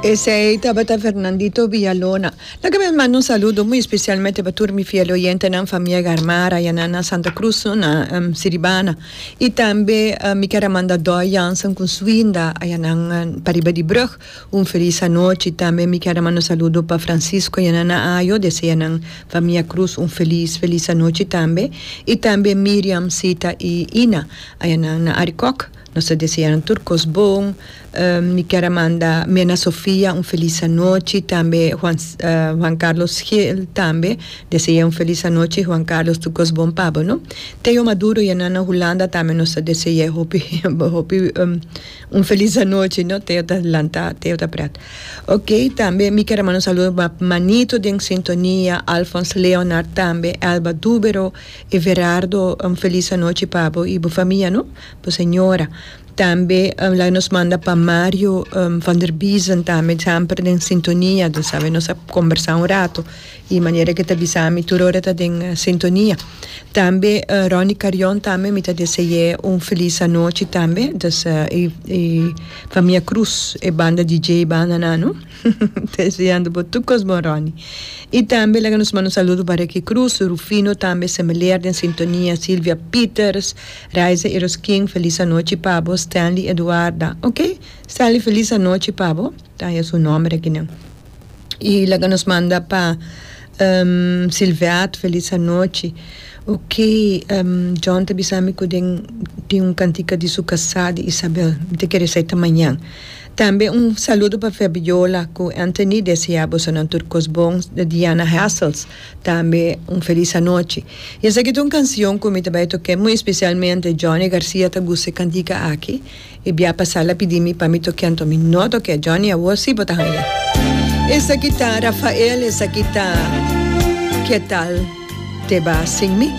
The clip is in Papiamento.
Esei tabata Fernandito Villalona. Na ke mes manda un saludo muy especialmente pa tur mi fiel oyentenan famia Garmara yanan na Santa Cruz na Siribana y tambe mi ker a manda Doy Jansen con su Inda ayanan pariba di brug un feliz anochi y tambe mi ker a manda un saludo pa Francisco yanan na Ayo desea yanan famia Cruz un feliz feliz anochi tambe y tambe Miriam Sita y Ina ayanan na Arikok Nos ta deseanan tur cos bon. Mi kier a manda mi Ana Sofia un feliz anochi, tambe Juan Juan Carlos Gil tambe dese'e un feliz anochi, Juan Carlos tur cos bon pa bo no. Theo Maduro y e nan na Hulanda tambe nos ta dese'e hopi hopi un feliz anochi no, Theo ta lanta Theo ta prat. Ok tambe mi kier a manda un saludo pa Manito den sintonia, Alphonse Leonard tambe, Elba Dubero, Everardo un feliz anochi pa bo y bo famia no. bo señora tambe laga nos manda pa Mario van der Biezen tambe semper den sintonia di sabe nos a combersa un rato y manera que ta bisa mi tur ora ta den sintonia tambe Ronnie Carion tambe mi ta dese'e un feliz anochi tambe dus y famia Cruz e banda DJ banda nan no ta deseando bo tur cos bon Ronnie y tambe laga nos manda un saludo pa Ricky Cruz Rufino tambe semeleer den sintonia Silvia Peters. Raiza Eroskin, Felis anochi pa bo. Stanley Eduarda, Ok, Stanley felis anochi pa bo. Ta ya su nomber aki nan. Y laga nos manda pa Silveat, Felis anochi. Ok, John ta bisa mi cu den tin un cantica di su casa di Isabel. Mi ta kere sa e ta mañan. Tambe un saludo pa Fabiola cu Anthony desea bosonan tur cos bon. Diana Hassels. Tambe un felis anochi. Y esaki ta un cancion cu mi ta bay toke muy especialmente Johnny Garcia ta gusta e cantica aki y bia pasa la pidi mi pa mi toke anto mi no toke Johnny awor si bo ta haya. Esaki ta Rafael esaki ta Ketal te ba sin mi.